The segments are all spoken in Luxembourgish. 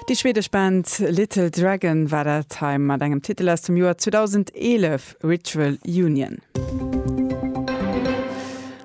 Déi schwedesch Band Little Dragon war dat hei mat engem Titel aus dem Joer 2011, Ritual Union.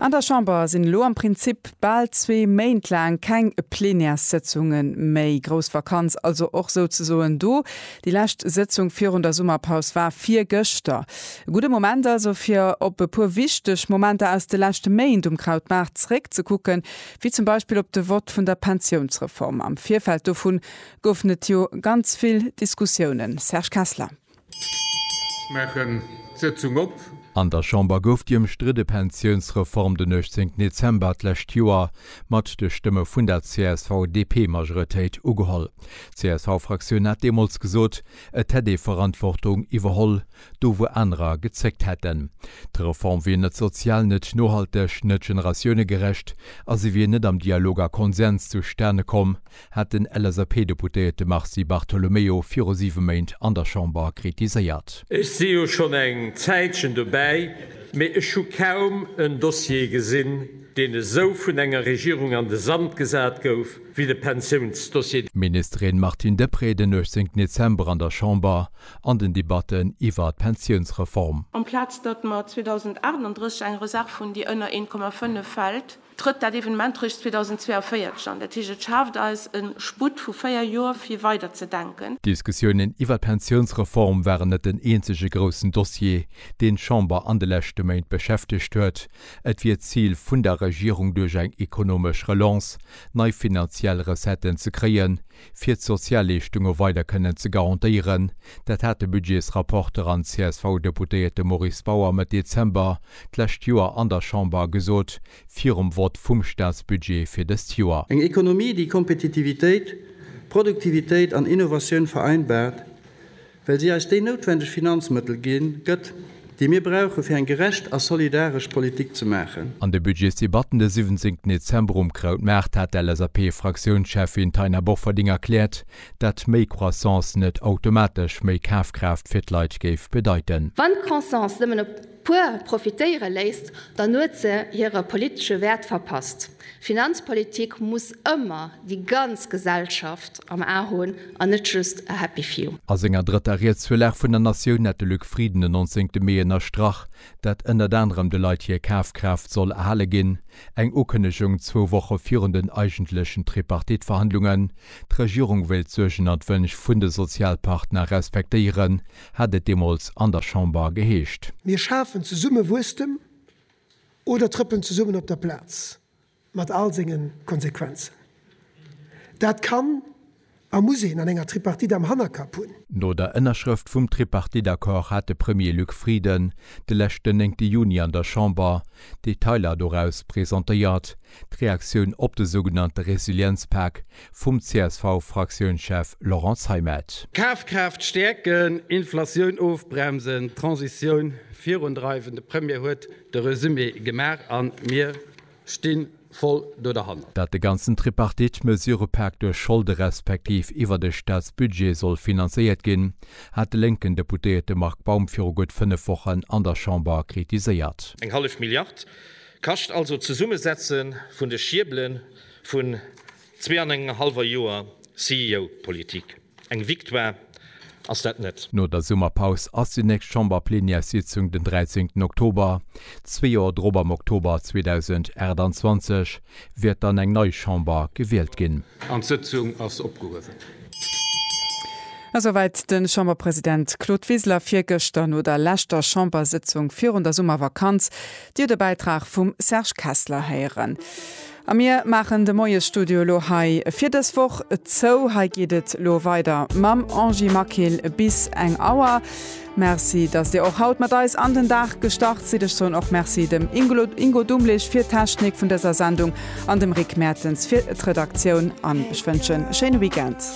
An der Chamber sinn elo am Prinzip bal zwee Méint laang keng Plenärssëtzunge méi. Grouss Vakanz also och souzesoen do. Déi lescht Sëtzung virun der Summerpaus war virgëschter. E gudde Moment also, fir op e puer wichteg Momenter aus de leschte Méint um Krautmaart zeréckzekucken, wéi zum Beispill op de Vott vun der Pensiounsreform, am Virfeld dovun goufen et jo ganz vill Diskussiounen, Serge Kessler. Ech maachen d'Sëtzung op. An der Chamber gouf déi ëmstridde Pensiounsreform den 18 Dezember d'lescht Joer mat de Stëmme vun der CSV-DP-Majoretéit ugeholl. D'CSV-Fraktioun hat deemools gesot, et hätt ee Verantwortung iwwerholl, do wou anerer gezéckt hätten. D'Reform wier net sozial, net nohalteg, net generatiounegerecht a se wier net am Dialog a Konsens zustane komm, hat den LSAP-Deputéierte Mars Di Bartolomeo viru siwe Méint an der Chamber kritiséiert. Ech si jo schonn eng Zäitchen dobäi, mee ech hu kaum en Dossier gesinn, deen esou vun enger Regierung an de Sand gesat gouf wéi de Pensiounsdossier. D'Ministerin Martine Deprez den 18 Dezember an der Chamber an den Debatten iwwer d'Pensiounsreform. Amplaz datt mer 2038 eng Reserv hunn, déi ënner 1,5 fält, trëtt dat Evenement réischt 2042 an. Dat heescht, et schaaft eis e Sputt vu véier Joer, fir weider ze denken. D'Diskussiounen iwwer d'Pensiounsreform waren net den eenzege groussen Dossier, deen d'Chamber an de leschte Méint beschäftegt huet. Et wier d'Zil vun der Regierung, duerch eng ekonomesch Relance nei finanziell Recetten ze kréien, fir d'Sozialleeschtunge weider kënnen ze garantéieren. Dat hat de Budgetsrapporter an CSV-Deputéierte Maurice Bauer Mëtt Dezember d'lescht Joer an der Chamber gesot, virum Vott vum Staatsbudget fir dëst Joer. Eng Ekonomie, déi Kompetitivitéit, Produktivitéit an Innovatioun vereinbart, Well si eis déi noutwendeg Finanzmëttel ginn, gëtt, déi mir brauchen, fir eng gerecht a solidaresch Politik ze maachen. An de Budgetsdebatten de 17 Dezember um Krautmaart hat d'LSAP-Fraktiounscheffin Taina Bofferding erkläert, dat méi Croissance net automatesch méi Kafkraaft fir d'Leit géif bedeiten. Wann d'Croissance nëmmen op puer profitéiere léisst, dann huet se hire politesche Wäert verpasst. Finanzpolitik muss ëmmer déi ganz Gesellschaft am A hunn an net just a happy few. A senger drëtter Ried zur Lag vun der Natioun hat de Luc Frieden den 19 Mee ënnerstrach, datt ënnert anerem de Leit hir Kafkraaft soll erhale ginn, eng Ukënnegung zwou Woche virun den eigentlechen Tripartite-Verhandlungen. D'Regierung wéilt d'Suergen an d'Wënsch vun de Sozialpartner respektéieren, hat et deemools an der Chamber geheescht. Mir schafen zesumme Wuesstem oder trëppelen zesummen op der Plaz, mat all senge Konsequenzen. Dat kann a muss een an enger Tripartite am Hannerkapp hunn. No der Ënnerschrëft vum Tripartite-Accord hat de Premier Luc Frieden de leschten néngte Juni an der Chamber d'Detailer doraus presentéiert, d'Reaktioun op de sougenannte Resilienzpak, vum CSV-Fraktiounschef Laurent Zeimet. Kafkraaft stäerken, Inflatioun ofbremsen, d'Transitioun virundreiwen, de Premier huet de Resumé gemaach a mir sti voll do derhanner. Datt de ganzen Tripartite Mesurëpak duerch Scholde respektiv iwwer de Staatsbudget soll finanzéiert ginn, hat de lénken Deputéierte Marc Baum viru gutt 5 Wochen an der Chamber kritiséiert. Eng hallef Milliard kascht also d'Zesummesetze vun de Schiebele Vun zwee an engem hallwer Joer CEO-Politik, eng Victoire ass dat net. No der Summerpaus ass déi nächst Chamberplenièrssitzung den 13 Oktober. Zwee Joer drop, am Oktober 2028, wäert dann eng nei Chamber gewielt ginn. An d'Sëtzung ass opgehuewen. Esouwäit de Chamberpresident Claude Wiseler virgëschter no der leschter Chambersëtzung virun der Summervakanz. Dir de Bäitrag vum Serge Kessler héieren. A mir maachen de Moiesstudio elo hei fir dës Woch zou. Hei geet et elo weider mam Angie Maquil bis eng Auer. Merci, dass Dir och haut mat eis an den Dag gestart sidd. Ech soen och Merci dem Ingo Dumlich fir d'Technik vun dëser Sendung an dem Rick Mertens fir d'Redaktioun an ech wënschen e schéine Weekend.